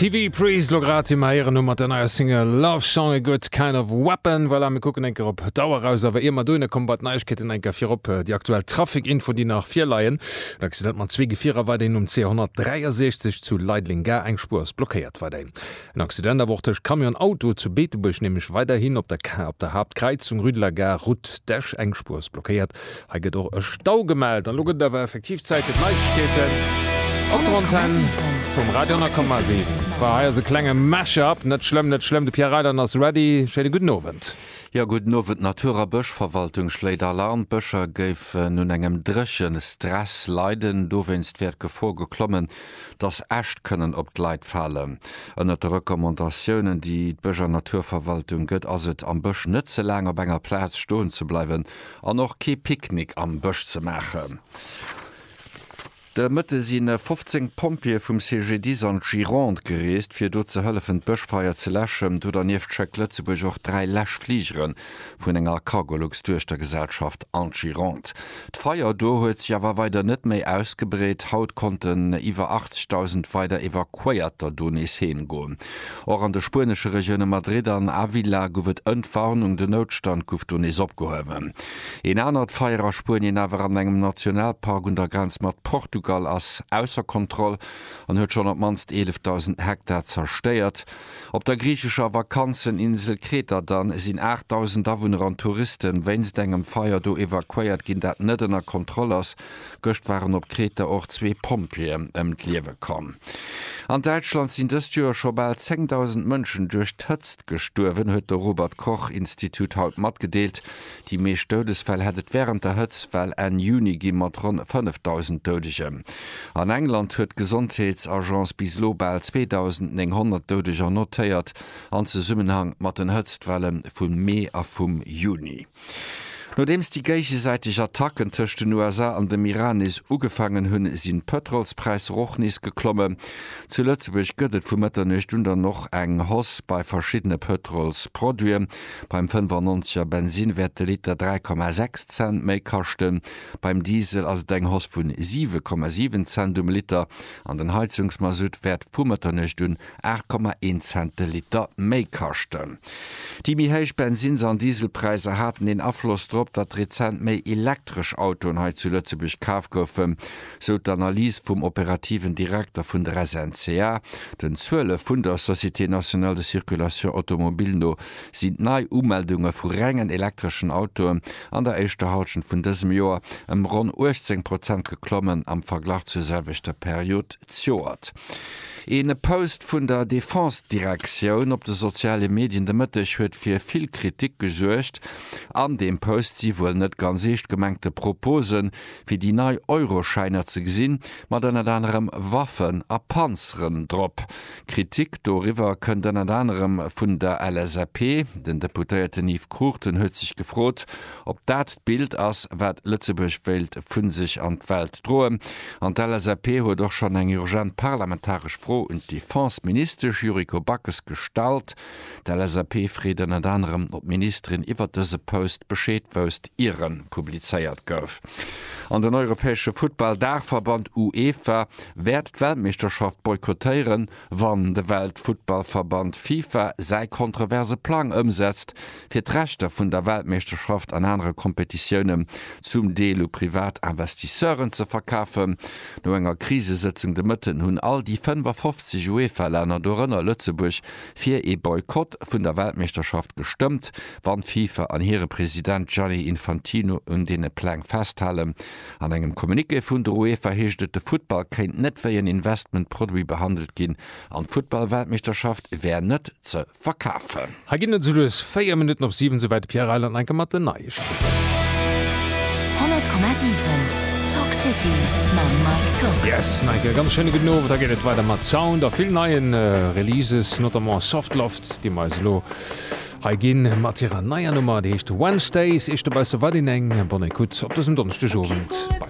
TV Priest lo grad im heieren hu mat der neier Single Love Song e gutt kind of weapon. Voilà, mir kucken enker op d'Auer raus, awer ier mer dohinner kommen, bei d'Neiegkeeten enker virop déi aktuell Trafic-Info déi nach virleien. En Accident mat zwee Gefierer weiderhin um C163 zu Leideleng Gare, eng Spuer ass blockéiert weiderhin. En Accident awer och tëscht Camion an Auto zu Beetebuerg, nämlech weiderhin op der Kar op der Haaptkräizung, Rue de la Gare, Route d'Esch. Eng Spuer ass blockéiert. Hei gëtt och e Stau gemellt. An elo gëtt et awer effektiv Zäit fir d'Neiegkeeten op der Antenn vum Radio 10,7. Voilà, hei ass e klenge Mash-up. Net schlëmm, net schlëmm, de Pierre Reyland ass ready. Schéine gudden Owend. Jo, gudden Owend. D'Natur a Bëschverwaltung schléit Alarm. D'Bëscher géifen un engem Dréchestress leiden. Dowéinst wär d'Gefor geklommen, dass Äscht kënnen op d'Leit falen. Ënnert de Recommandatiounen, déi d'Bësch an Naturverwaltung gëtt, ass et, am Bësch net ze laang op enger Plaz stoen ze bleiwen an och kee Picknick am Bësch ze maachen. De Mëtte si 15 Pompjeeë vum CGDIS an d'Gironde gereest, fir do ze hëllefen, d'Bëschfeier ze läschen. Do dernieft schéckt Lëtzebuerg och dräi Läschfligeren, vun enger Cargolux-Duechtergesellschaft Anchironte. D'Feier do huet sech awer weider net méi ausgebreet. Haut konnten iwwer 80.000 weider Evakuéierter do nees heem goen. Och an de spuenesche Regioune Madrid an Ávila gouf et Entwarnung, den Noutstand gouf do nees opgehuewen. Een anert Feier a Spuenien, awer an engem Nationalpark un der Grenz mat Portugal, ass ausser Kontroll an huet schonn op d'mannst 11.000 Hektar zerstéiert. Op der griichescher Vakanzeninsel Kreta dann, sinn 8.000 Awunner an Touristen wéinst engem Feier do evakuéiert ginn, dat net ënner Kontroll ass. Gëscht waren op Kreta och zwee Pompjeeën ëm d'Liewe komm. An Däitschland sinn dëst Joer scho bal 10.000 Mënschen duerch d'Hëtzt gestuerwen, huet de Robert-Koch-Institut haut matgedeelt. Déi meescht Doudesfäll hätt et wärend der Hëtztwell Enn Juni gi mat ronn 5.000 Doudegen. An England huet d'Gesondheetsagence bis elo bal 2.900 Doudeger notéiert an Zesummenhang mat den Hëtztwelle vum Mee a vum Juni. Nodeems déi géigesäiteg Attacken tëscht den USA an dem Iran nees ugefaangen hunn, sinn d'Pëtrolspräisser och nees geklommen. Zu Lëtzebuerg gëtt et vu Mëtternuecht un dann och eng Hausse bei verschiddene Pëtrolsproduiten. Beim 95 er Bensin wäert de Liter 3,6 Cent méi kaschten. Beim Diesel ass et eng Hausse vu 7,7 Cent um Liter an den Heizungsmasutt wäert vu Mëtternuecht un 8,1 Cent de Liter méi kaschten. Déi méi héich Bensins an Dieselpräisser haten een Afloss drop, datt rezent méi elektresch Autoen hei zu Lëtzebuerg kaf goufen. sou d'Analys vum operativen Direkter vun der SNCA. Den Zuele vun der Société nationale de circulation automobile no sinn d'Nei-Umeldunge vu rengen elektreschen Autoen an der éischter Hallschent vun dësem Joer ëm ronn 18 Prozent geklommen am Verglach zur selwechter Period d'Joert. Ee Post vun der Defense-Direktioun op de soziale Medien de Mëtteg huet fir vill Kritik gesuergt. An deem Post si wuel net ganz eescht gemengte Proposen, fir déi nei Euroschäiner ze gesinn, mat ënnert anerem Waffen a Panzeren drop. Kritik doriwwer kënnt ënnert anerem vun der LSAP. Den Deputéierten Yves Cruchten huet sech gefrot, ob dat d'Bild ass, wat Lëtzebuerg wéilt vu sech an d'Welt droen. An d'LSAP huet och schonn eng urgent parlamentaresch Fro un d'Defense-Ministesch Yuriko Backes gestallt. D'LSAP freet ënnert anerem, ob d'Ministerin iwwert dëse Post Bescheed wousst, ier en publizéiert gouf. An den europäesche Futtball-Daachverband UEFA wäert d'Weltmeeschterschaft boykottéieren, wann de Weltfuttballverband FIFA säi kontroverse Plang ëmsetzt, fir d'Rechter vun der Weltmeeschterschaft an anere Kompetitiounen zum Deel u privat Investisseuren ze verkafen. No enger Krisesëtzung de Mëtten hunn all déi 55 UEFA-Länner, dorënner Lëtzebuerg, fir ee Boykott vun der Weltmeeschterschaft gestëmmt, wann d'FIFA an hire President Gianni Infantino un deene Pläng festhalen. An engem Communiqué vun der UEFA heescht et, de Futtball kéint net wéi en Investment-Produit behandelt ginn an d'Futtball-Weltmeeschterschaft wär net ze verkafen. Hei ginn et esou lues 4 Minutten op 7, souwäit de Pierre Reyland enke mat den Neiegkeeten. 100,7 Talk City mam Mike Tock. Yes, Neieke, ganz schéine gudden Owend. Da geet et weider mat Sound a vill neie Releases, notamment Soft Loft, déi mer eis elo hei ginn, mat hirer neier Nummer, déi heescht Wednesdays. Eischte Beissen war deen eng. Bonne Ecoute op dësem Donneschdegowend bei.